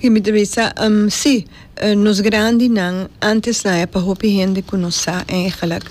Y mi ta bisa, Um, si, nos grandinan antes nan e pa hopi hende cu no sa eigenlijk.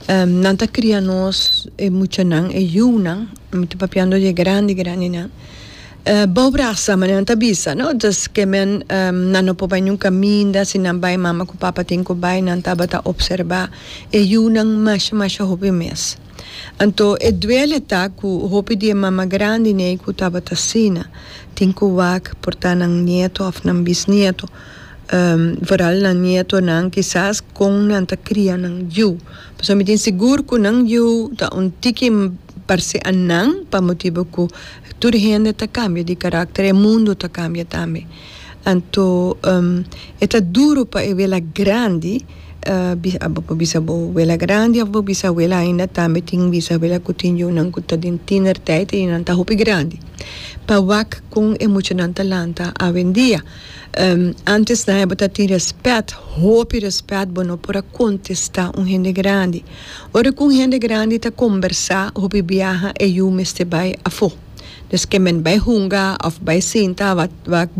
Um, nan ta cria nos, e muchanan, e yiunan, mi ta papiando di e grandi grandinan, eh, bao brasa, mane nan ta bisa, no? Dus, ke men, um, nan no por bai nun caminda, si nan bai, mama cu papa tin cu bai, nan tabata observa e yiunan masha, masha hopi mes. Anto e duele ta cu hopi di e mama grandi n'ey cu tabata asina tin cu wak por ta nan nieto of nan bisnieto, vooral nan nietonan kisas con nan ta cria nan yu. Pasobra mi tin sigur cu nan yu ta un tiki parse a nan pa motibo cu tur hende ta cambia di caracter, e mundo ta cambia tambe. Anto e ta duru pa e wela grandi bo bisa bo wela grandi of bo bisawela ainda tambe tin bisawela ku tin yunan ku ta den tinerteit y nan ta hopi grandi pa wak kon e muchanan ta lanta awendia antes nae bo ta tin respet hopi respet bo no por a kontesta un hende grandi ora ku un hende grandi ta kombersa hopi biaha e yu mester bai afo. Des ke men bai hunga of bai sinta wak wak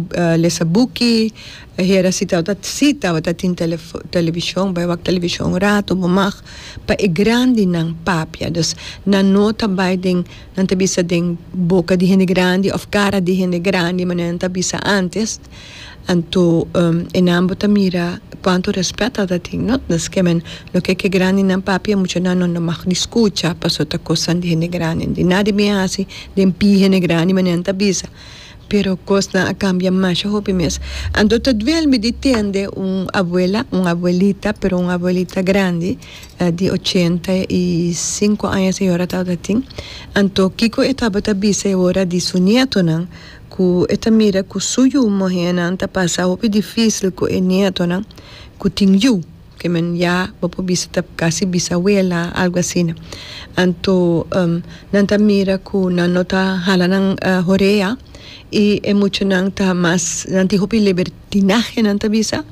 lesa buki e hera si tawata si tawata tin telefo televishon bai wak televishon un rato bo mag pa e grandinan papia dus nan no ta bai den nan ta bisa den boka di hende grandi of kara di hende grandi manera nan ta bisa antes. Anto e nan bo ta mira cuanto respet ata tin no ta nesque men lo que ke grandinan papia e muchanan no no mag ni scucha paso ta cosnan di hende grandi di na di bien haci den pie hende grandi manera nan ta bisa pero cosnan a cambia masha hopi mes anto ta duel mi di tende un abuela un abuelita pero un abuelita grandi di ochenta y cinco aña a señora tabata tin anto kico e tabata bisa e ora di su nietonan. ku e ta mira ku su yu muhénan ta pasa hopi difísil ku e nietonan ku tin yu, ke men ya bo por bisa ta kasi bisabuela, algu asina. Anto nan ta mira ku nan no ta hala nan horea i e muchanan ta mas nan tin hopi libertad. Tinajenan ta bisa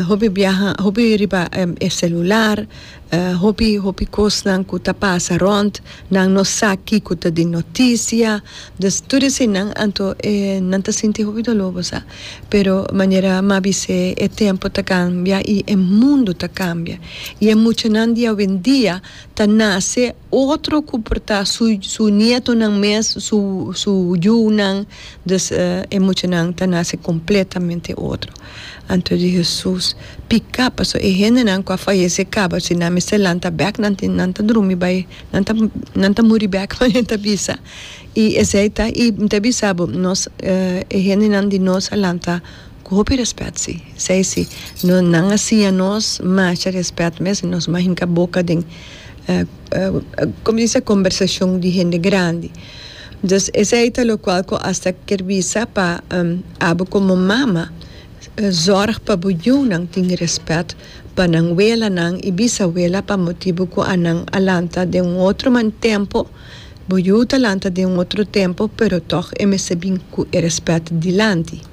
hopi biaha hopi riba e celular hopi hopi cosnan cu ta pasa rond nan no sa kico ta den noticia dus tur eseynan anto e nan ta sinti hopi dolor bo sa pero manera m'a bis'e e tempo ta cambia y e mundo ta cambia y e muchanan di awendia ta nace otro cu por ta su su nietonan mes su su yunan Dus e muchanan ta nase kompletamente otro. Anto di Hesus pika, pasobra e hendenan ku a fayesé kaba si nan mester lanta bèk, nan tin nan ta drumi bai, nan ta nan ta muri bèk manera e ta bisa. I esei ta i mi ta bisa bo, nos e hendenan di nos a lanta ku hopi rèspèt si. Esei si, no nan a siña nos masha rèspèt mes i nos mahinka boka den komo se dice? Kombersashon di hende grandi. Dus esei ta lokual ku asta kier bisa pa abo komo mama zorg pa bo yunan tin rèspèt pa nan welanan i bisawela pa motibu ku a nan a lanta den un otro man tempo bo yu ta lanta den un otro tempo pero tòg e mester bin ku e rèspèt dilanti.